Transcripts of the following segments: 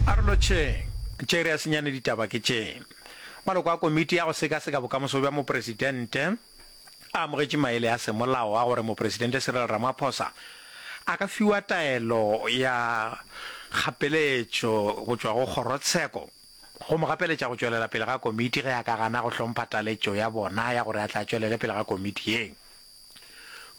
A re lotšheng, tše re a senyane ditaba ke tše. Maloko a Komiti ya go Sekaseka Bokamoso bja Mopresidente a amogetše maele a semolao a gore Mopresidente Cyril Ramaphosa a ka fiwa taelo ya kgapeletšo go tšwa go Kgorotsheko go mo gapeletša go tšwelela pele ga Komiti ge a ka gana go hlompha taletšo ya bona ya gore a tla tšwelele pele ga Komiti ye.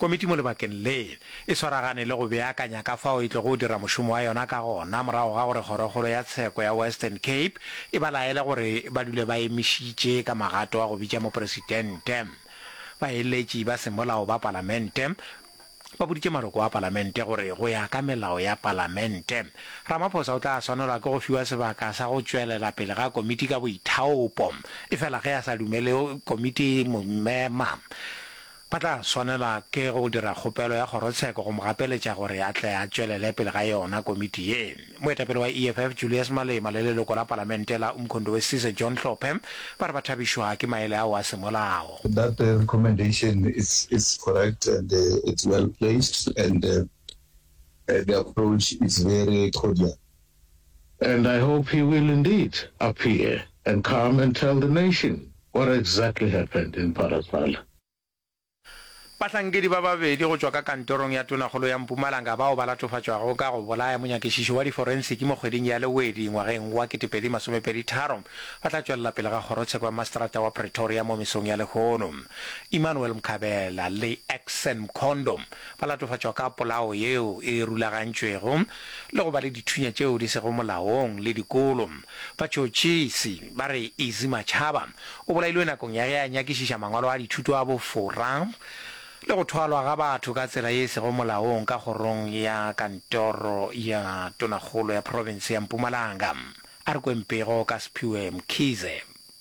Komiti mo lebakeng le, e swaragane le go beakanya ka fao e tlogo dira mošomo wa yona ka gona morago ga gore Kgorokgolo ya Tsheko ya Western Cape e ba laele gore ba dule ba emišitše ka magato a go bitša Mopresitente. Baeletši ba semolao ba Palamente ba boditše maloko a Palamente gore go ya ka melao ya Palamente, Ramaphosa o tla swanelwa ke go fiwa sebaka sa go tšwelela pele ga komiti ka boithaopo, efela ge a sa dumele komiti e mo mema, ba tla swanelwa ke go dira kgopelo ya kgorotsheko go mo gapeletša gore a tle a tšwelele pele ga yona komiti ye. Moetapele wa EFF Julius Malema le leloko la Palamente la Umkhondo Wesizwe John Hlophe ba re ba thabišwa ke maele ao a semolao. That recommendation is correct and it's well placed and. The approach is very cordial and I hope he will indeed appear and come and tell the nation what exactly happened in Phalaphala. Bahlankedi ba babedi go tšwa ka kantorong ya tonakgolo ya Mpumalanga bao ba latofatšwago ka go bolaya monyakišiši wa diforensiki mo kgweding ya Lewedi ngwageng wa 2023 ba tla tšwelela pele ga kgorotsheko ya maseterata wa Pretoria mo mesong ya lehono. Emmanuel Mkhabela le Axson Mkhondo ba latofatšwa ka polao yeo e rulagantšwego le go ba le dithunya tšeo di sego molaong le dikolo. Batšhotšhisi ba re Easy Machaba o bolailwe nakong ya ge a nyakišiša mangwalo a dithuto a bofora le go thwalwa ga batho ka tsela ye e sego molaong ka kgorong ya kantoro ya tonakgolo ya profense ya Mpumalanga. A re kweng pego ka Sphiwe Mkhize.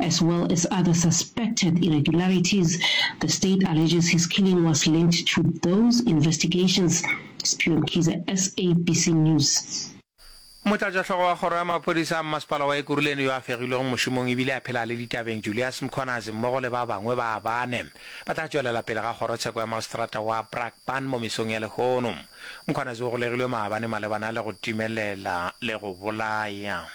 as well as other suspected irregularities the state alleges his killing was linked to those investigations, Sphiwe Mkhize, SABC News. Motlatšahlogo wa kgoro ya maphodisa a mmasepala wa Ekurhuleni yo a fegilwego mošomong e bile a phela a le ditabeng Julias Mkhwanazi mmogo le ba bangwe ba bane ba tla tšwelela pele ga kgorotsheko ya maoseterata wa Brakpan mo mesong ya lehono. Mkhwanazi o golegilwe maabane malebana le go timelela le go bolaya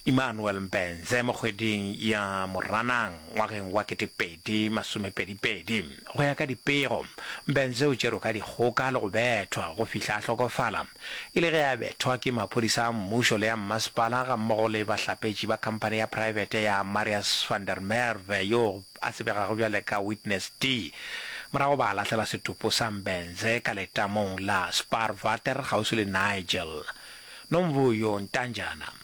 Emmanuel Mbenze mo kgweding ya Moranang ngwageng wa ketepedi masomepedipedi. Go ya ka dipego, Mbenze o tšerwe ka dikgoka le go bethwa go fihla a hlokofala, e le ge a bethwa ke maphodisa a mmušo le a mmasepala gammogo le bahlapetši ba khamphane ya praebete ya Marius van der Merwe yo a tsebegago bjale ka Witness D. Morago ba lahlela setopo sa Mbenze ka letamong la Spaarwater kgauswi le Nigel. Nomvuyo Ntanjana.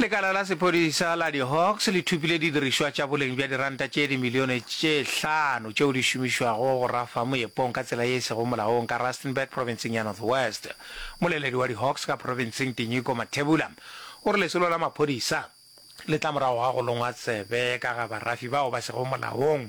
Lekala la sephodisa la di-Hawks le thupile didirišwa tša boleng bja diranta tše dimilione tše hlano tšeo di šomišwago go rafa moepong ka tsela ye e sego molaong ka Rustenburg profenseng ya North West. Moleledi wa di-Hawks ka profenseng Tinyiko Mathebula o re lesolo la maphodisa le tla morago ga go longwa tsebe ka ga barafi bao ba sego molaong.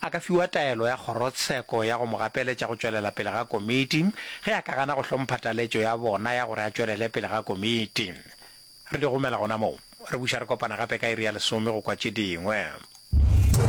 a ka fiwa taelo ya kgorotsheko ya go mo gapeletša go tšwelela pele ga komiti ge a ka gana go hlompha taletšo ya bona ya gore a tšwelele pele ga komiti. Re di romela gona moo. Re buša re kopana gape ka iri ya lesome go kwa tše dingwe.